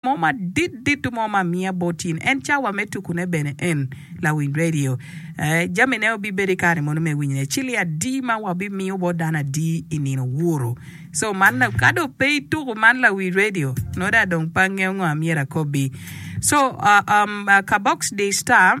mo madit dit mo ma amiya bot in, en cawa me tukune bene en, lawiny radio. Ee, jamine obibedo i kare mono me winyone, ci li adi ma wabimiyo bot dano adi i nino wuro? So, man la, ka dong pe ituku man lawiny radio, node a dong pe angeyo ngo a myero akobbi. So, um, um, ka box di star.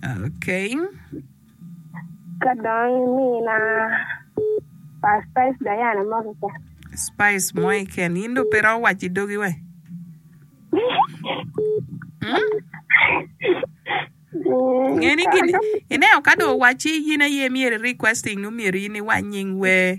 Okay. Ka dong imina pa Spice Diana mo keken. Spice mo iken. In do pe ro wac i dogi we. Hmm? Ngeni gini, ineo ka do wacci yin aye myero i requesting nu myero in iwac nying wer.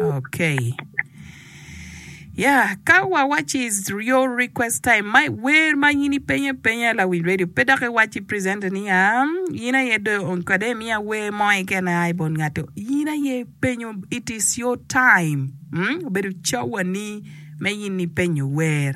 Okay. Yeah, ka wawaci is your request time ma wer ma in ipenye penya lawil radio pe dok iwaci presenter ni ya in aye do on kade miya wer mo ikene ai bon ngato in aye penyo it is your time mm? obedo cawani me in ipenyo wer